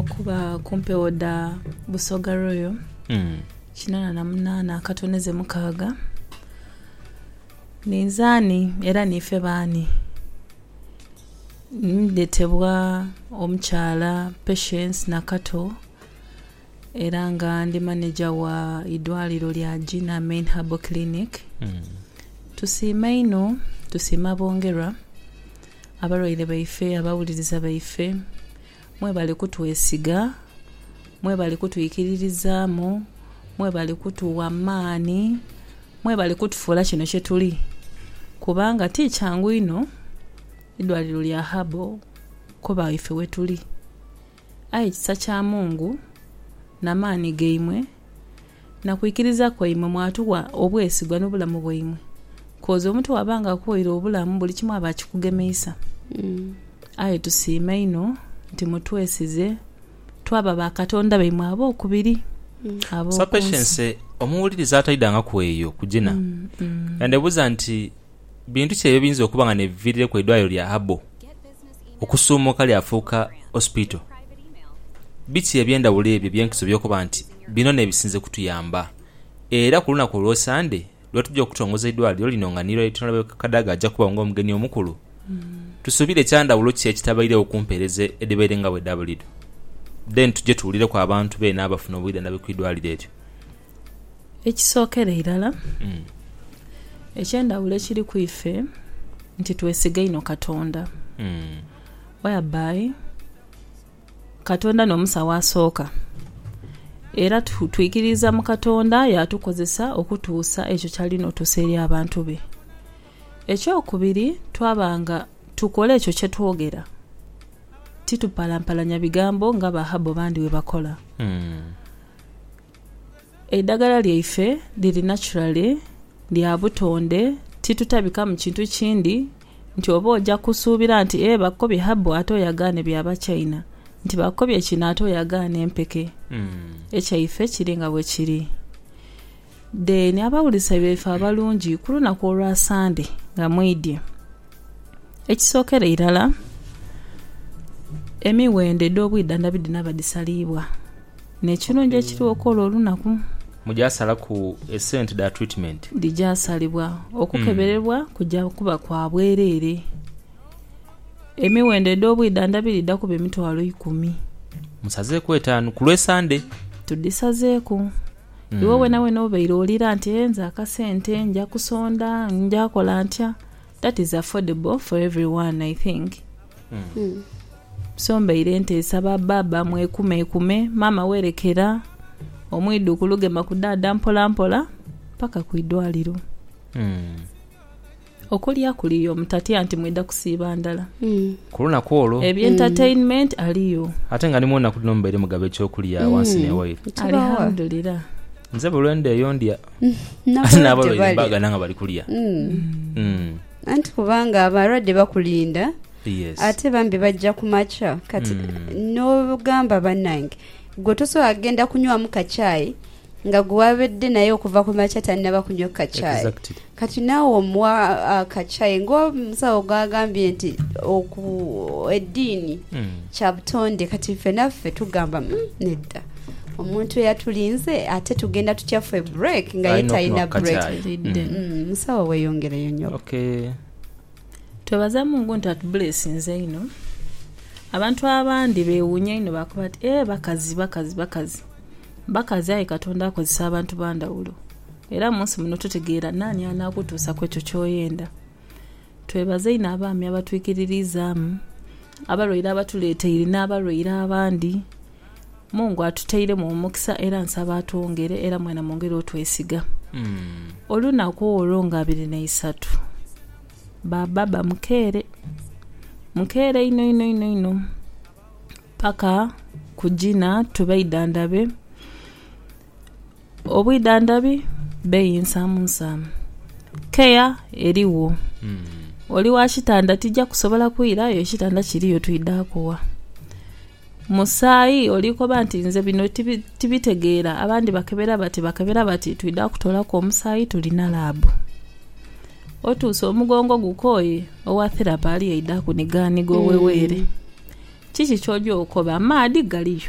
Okuba ku mpewo dha Busoga Royal kinana na munana akatone ze mukaaga, ninze ani era niife baani? Ndetebwa omukyala Patience Nakato era nga ndi maneja wa idwaliro lya Gina Main Herbal Clinic. Tusiima inho, tusiima bongerwa, abalwaire baife, abawuliriza baife. Mwebale kutwesiga, mwebale kutwikiririzaamu, mwebale kutuwa maani, mwebale kutufuula kino kye tuli kubanga ti kyangu inho idwaliro lya Habo kuba ife we tuli. Aye kisa kya Mungu na maani gaimwe na kwikiriza kwaimwe mwatuwa obwesigwa n'obulamu bwaimwe, kozi omuntu bwaba nga akuwaire obulamu buli kimu aba akikugemeisa. Aye tusiima inho nti mutwesize twaba ba Katonda baimwe ab'okubiri ab'oku nsi. Sapeshense omuwuliriza ataidangaku eyo kugina, yandhebuuza nti. Bintu ki eby'ebiyinza okuba nga n'ebiviirireku eidwaliro lya Habo okusuumuka lyafuuka Hospital? Biki eby'endhawulo ebyo eby'enkizo by'okoba nti bino n'ebisinze kutuyamba? Era ku lunaku olwa Sande lwe tuja okutongoza eidwaliro lino nga ni Right Honourable Kadaga aja kuba nga omugeni omukulu, tusuubire kya ndhawulo ki ekitabaireo ku mpeereza edhibaire nga bwe dha buliidho? Then tuje tuwulireku abantu beene abafuna obwidhandhabi ku idwaliro eryo. Ekisookera irala, eky'endhawulo ekiri ku ife nti twesiga inho Katonda whereby Katonda n'omusawo asooka. Era twikiririza mu Katonda yaatukozesa okutuusa ekyo ky'ali n'otuusa eri abantu be. Ekyokubiri, twaba nga tukola ekyo kye twogera, titupalampalanya bigambo nga Bahabu abandi bwe bakola. Eidhagala lyaife liri naturally, lya butonde, ti tutabikamu kintu kindi nti oba oja kusuubira nti ee bakukobye herbal ate oyagaane bya ba China, nti bakukobye kino ate oyagaane empeke. Ekyaife kiri nga bwekiri. Then abawulisa baife abalungi ku lunaku olwa Sande nga mwidye, ekisookera irala emiwendo edh'obwidhandhabi dhino abadhisaliibwa. N'ekirungi ekiriwo kw'olwo olunaku. Muja salaku esente dha treatment. Dhija salibwa. Okukeberebwa kuja kuba kwa bwereere. Emiwendo edh'obwidhandhabi dhidha kuba emitwalo ikumi. Musazeeku etaanu ku lw'e Sande. Tudhisazeeku. Iwe weenaweena obaire owulira nti, Hee nze akasente, nja kusonda, nja kola ntya? That is affordable for every one I think so mbaire nteesa ba baaba mwekumekume maama werekera omwidhukulu gema ku dhaadha mpola mpola paka ku idwaliro okulya kuliyo mutatya nti mwidha kusiiba ndala ku lunaku olwo ebye entertainment aliyo ate nga ni mwonaku dhino mubaire mugaba ekyokulya wansi newaire Kibawa. alihamdulira nze buli lwendheeyo ndya n'abalwaire baaghana nga bali kulya anti kubanga abalwadde bakulinda ate bambi bajja ku makya kati n'ogamba bannange gwe tosobola kugenda kunywamu ka chai nga gwe wabadde naye okuva ku makya tannaba kunywa ku ka chai kati naawe omuwa ka chai ng'omusawo gwagambye nti eddiini Kya butonde. Kati ife naffe tugamba, Umm, nedda. Omuntu eyatulinze, ate tugenda tutya ffe break nga ye talina break? Umm, musawo weyongereyo nyabo. Okay. Twebaza Mungu nti atubulesinze inho. Abantu abandi bewunya inho bakoba bati ee bakazi bakazi bakazi. Bakazi aye Katonda akozesa abantu bandhawulo. Era munsi muno totegeera nani anakutuusa kwekyo kyoyenda. Twebaza inho abaami abatwikiririzaamu. Abalwaire abatuleeteire n'abalwaire abandi, Mungu atuteiremu omukisa era nsaba atwongere era mwena mwongere otwesiga. Olunaku olwo nga abiri na isatu ba baba mukeere, mukeere inho inho inho inho paka kugina tubaidhandhabe. Obwidhandhabi beeyi nsaamu nsaamu. Keya erigho. Oli wa kitanda tija kusobola kwira aye ekitanda kiriyo twidha kuwa. Musaayi oli koba nti nze bino tibitegeera abandi bakebera bati bakebera bati twidha kutoolaku omusaayi tulina laabu. Otuuse omugongo gukooye owa therapi ali aidha kunigaaniga oweweere. Kiki ky'oja okoba? Amaadhi galiyo.